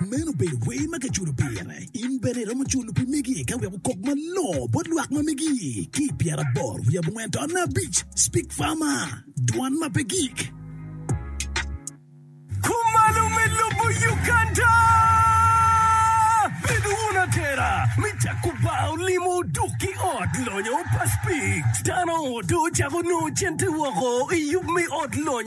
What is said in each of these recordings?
Meno obedo wer ma kiculo pire. In bene iromo culo pi megi ka wek okok malongo bot lwak ma megi. Ki i pyeraboro wiye abongwen tona abic, Speak Farmer, Dwan ma pe gik. Kumalo me lobo Uganda. Bedo wun atera me cako bar olimo oduk ki ot lonyo pa Speak. Dano odo ocako nongo cente woko i yub me ot lonyo.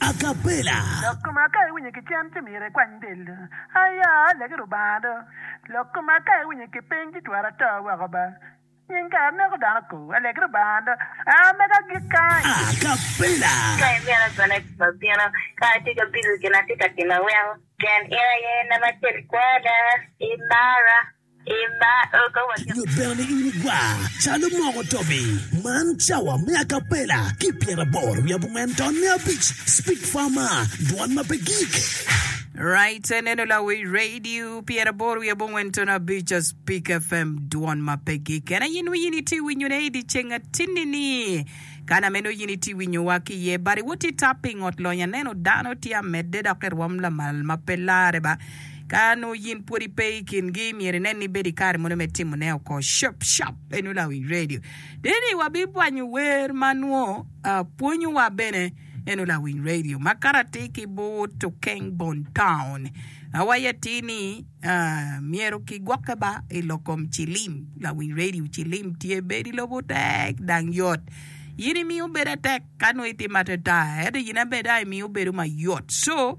A cappella. Lok koma ka iwinyo ki cen ci myero ikwany del do. Aya, lege Lubanga do. Lok koma ka iwinyo ki piny ci twero ato woko ba. Nying kare aneko dano ko. A lege Lubanga do. A mega agik kany. A cappella. Ka in bene agone i kom abino, ka atye ka bilo gin atye ka timo weng. Pien in aye nam acel kwena, imara. Nyut bene ni in igwar calo moko tobi. Man cawa me akapela ki pyeraboro wiye abongwen ton me abic Speak Farma dwon ma pe gik. Right se neno Lawil Radio pyeraboro wiye abongwen ton abic Speak FM dwon ma pe gik. Kena yin wi yin iti winyo ne idi ceng atini ni. Kana meno yin iti winyo wa ki ye bari woti tap pingot lony aneno dano ti amedde dok irwom lamal ma pe lare ba. Ka nongo yin pwod ipe i kingi, myero inen ni ibedo i kare mono me timone oko cop cop. En nongo lawi redio. Dini wabibwanyo wer ma nongo pwonyowa bene. En nongo lawiny redio. Ma kare atir ki but Okeng Bon Town, awaco atir ni myero kigwokke ba i lok kom cilim. Lawiny redio cilim tye bedo i lobo tek dang yot. Yin imiyo bedo atek ka nongo itimo atata, ento yin aye bedo imiyo bedo mayot. So,